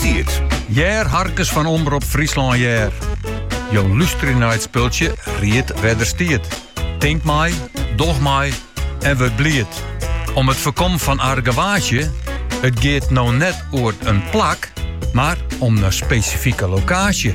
Tiid. Jêr Harkes fan Omrop Fryslân hjir. Jo luisterje nei it spultsje Ried wêr't er stiet. Tink mei, doch mei en wurd bliid. Om it foarkommen fan argewaasje, it giet no net oer in plak, mar om in spesifike lokaasje.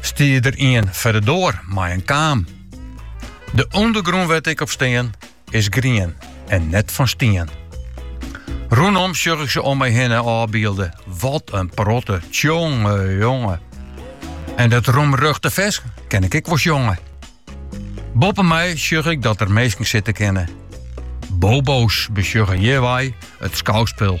Stie der ien foar de doar mei in kaam. De ûndergrûn wêr't ik op stean is grien en net fan stien. Rûnom sjoch ik se om my hinne ôfbylde. Wat in protte, tsjonge jonge. En dat roemruchte fers ken ik ek wol sjonge. Boppe my sjoch ik dat er minsken sitte kinne. Bobo's besjogge hjirwei it skouspul.